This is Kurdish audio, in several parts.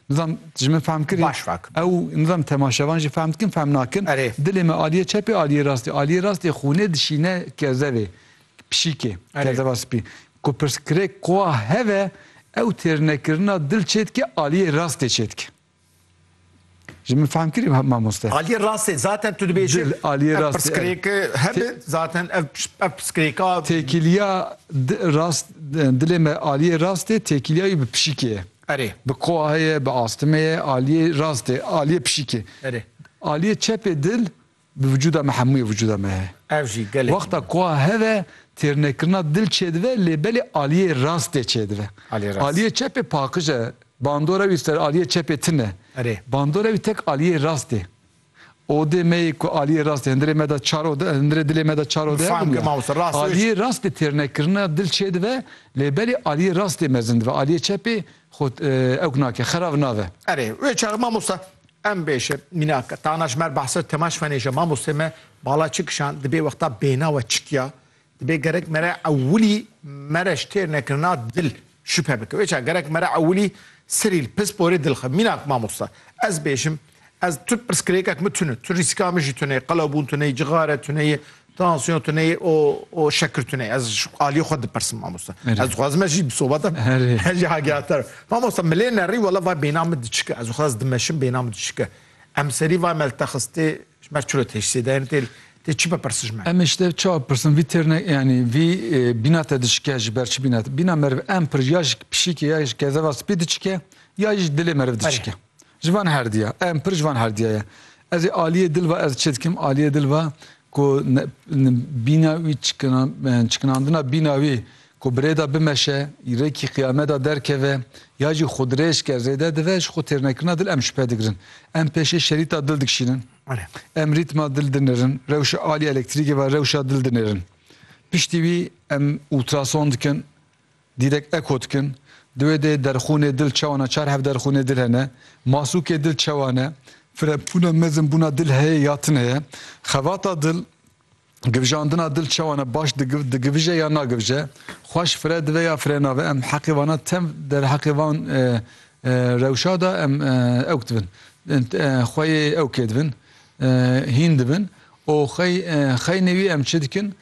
Nizam ji min fehm kirî. Baş fehm. Ew nizam temaşevan jî fehm dikin fehm nakin. Erê. Dilê me aliyê çepê aliyê rastê. Aliyê rastê xûnê dişîne kezevê, pişîkê, kezeva spî. Ku pirsgirêk qoa heve ew têrnekirina dil çêdike aliyê rastê çêdike. Ji min fehm kirî mamoste. Aliyê rastê zaten tu dibêjî. Dil aliyê rastê. Pirsgirêke hebe zaten ev ev pirsgirêka. Têkiliya rast dilê me aliyê rastê têkiliya wî bi pişîkê ye. Erê. Bi koahê ye, bi astime ye, aliyê rastê, aliyê pişikê. Erê. Aliyê çepê dil bi vücuda me hemûyê vücuda me heye. Ev jî gelekî. Wexta koa heve têrnekirina dil çêdive lê belê aliyê rastê çêdive. Aliyê rast. Aliyê çepê paqij e, bandora wî ser aliyê çepê tine. Erê. Bandora wî tek aliyê rastê. Odê me yê ku aliyê rast ê hundirê me de çar ode, hundirê dilê me de çar ode hebûn ya. Aliyê rast bi têrnekirina dil çêdibe lê belê aliyê rast ê mezin dibe, aliyê çep ê xwe ewk nake, xerav nabe. Erê, wê çar mamosta em bêje mînak, tana ji mer behsa Temaş Fenêj e, mamostê me bala çi kişand, di bê wexta bêhna we çi kiya, Dibê gerek mere ewilî mere ji têrnekirina dil şüphe bike. Wê çav gerek mere ewilî serî li pisporê dil xe. Mînak mamosta, ez bêjim, ez tu pirsgirêkek min tune, tu rîsika min jî tune ye, qelewbûn tune ye, cixare tune ye, tansiyon tune ye û û şekir tune ye. Ez ji aliyê xwe dipirsim mamosta. Ez dixwazim ez jî bi sobeta ez jî agehatdar bim. Mamosta milê nerî wela va bêhna min diçike. Ez dixwazim ez dimeşim bêhna min diçike. Em serî vay me li te xistê ji ber çi li teşsê de yên tê çi bipirsin ji me. Em ê ji te çawa bipirsin vî têrne yanî vî bîna te diçike ji ber çi bîna te? Bîna meriv em pir ya ji pişîkê ya ji kezeva spî diçike ya ji dilê meriv diçike. Ji van herdiya em pir ji van herdiya ye. Ez ê aliyê dil ve ez çi dikim aliyê dil ve ku bîna wî çikinandina bîna wî Ku bi rêda bimeşe, rêkî qiyameda derkeve, ya jî xwe dirêj ke rêde dive, ji xwe têrnekirina dil em şipe digirin. Em pêşê şerîta dil dikişînin. Em rîtma dil dinêrin, rewşa alî elektrîkê ve rewşa dil dinêrin. Piştî wî em ultrason dikin, dîrek eko dikin. Di wê de derxûnê dil çawan e, çar hev derxûnê dil hene. Masûkê dil çawan e, firebûna mezin bûna dil heye ya tune ye. Xevata dil. Givjandina dil çawan e baş digivije ya nagivije, xweş fire dive ya fire nave, em heqê vana tev derheqê van rewşa de em ewk dibin. Xwe yê ewkê dibin, hîn dibin û xey xeynê wî em çi dikin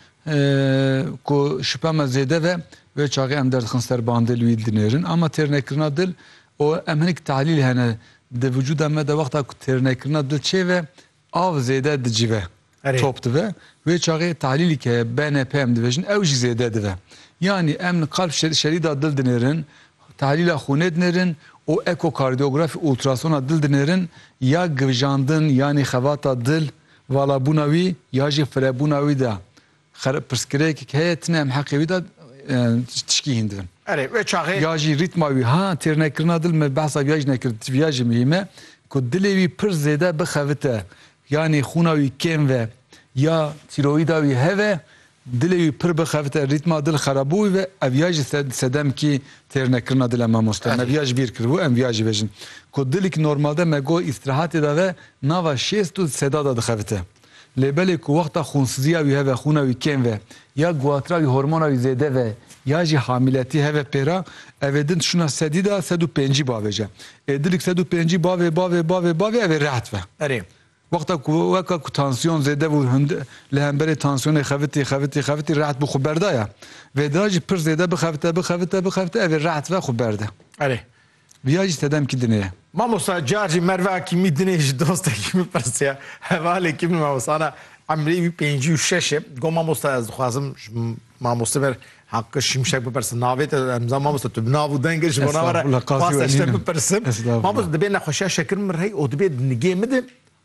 ku şipa me zêde ve wê çaxê em derdixin ser bandê li wî dinêrin ama têrnekirina dil û em hinek tahlîl hene di vücuda me de wexta ku têrnekirina dil çêve Av zêde dicive, top dive. Wê çaxê tahlîlî ke BNP em dibêjin ew jî zêde dive. Yanî em li qalb şerî da dil dinêrin, tahlîla xûnê dinêrin û ekokardiyografî ultrasona dil dinêrin ya givjandin yanî xevata dil, valabûna wî ya jî firebûna wî de Xereb pirsgirêkik heye tine em heqê wî da tişkî hîn dibin. Erê wê çaxê. Ya jî rîtma wî ha têrnekirina dil me behsa viya jî nekir viya jî muhîm e ku dilê wî pir zêde bixevite yanî xûna wî kêm ve ya tîroyîda wî heve dilê wî pir bixevite rîtma dil xerabûbû ve ev ya jî sedemkî têrnekirina dil e mamoste me viya jî bîr kiribû em viya jî vejin ku dilîk normalde me got îstirahatê da ve nava şêst û seda da dixevite. Lê belê ku wexta xûnsiziya wî heve xûna wî kêm ve ya guhatira wî hormona wî zêde ve ya jî hamîletî heve pêra ev ê din tişûna sedî de sed û pêncî bavê ce. Ê dilîk sed û pêncî bavê bavê bavê bavê ev ê reht ve. Erê, wexta ku weka ku tansiyon zêde bû hûnd li hemberê tansiyonê xevitî xevitî xevitî reht bû xwe berdaya. Vê dira jî pir zêde bixevite bixevite bixevite ev ê reht ve xwe berde. Erê, Viya jî sedemkî din e. Mamosta car jî Merve Akîmî din e ji dostekî min pirsiya hevalekî min mamosta na emrê wî pêncî û şeş e got mamosta ez dixwazim ji mamoste ber Haqqi Şimşek bipirsim navê te em zan mamosta tu bi nav û deng e ji bo na were Estağfurullah, qazî xwest ez ji te welînim. bipirsim Estağfurullah. mamosta dibê nexweşiya şekir min rey û dibê di nigê min de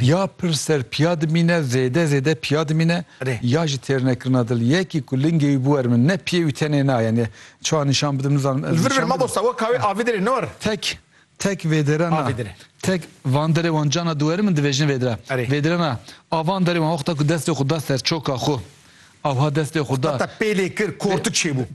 Ya pir ser piya dimîne, zêde zêde piya dimîne ya jî têrnekirina dil. Yekî ku lingê wî bûer min ne piyê wî tenê na yani çawa nîşan bidim nizanim ez nîşan bidim. Li vir vir mamosta we ka wê avê dirê ne war. Tek tek vêdire na. Avê dire. Tek van derê wan cana dû werim in divêjin vêdire. Erê. Vêdire na. A van derê wan wexta ku destê xwe da ser çoka xwe. Awha destê xwe da. Heta te pêlê kir kortik çêbû.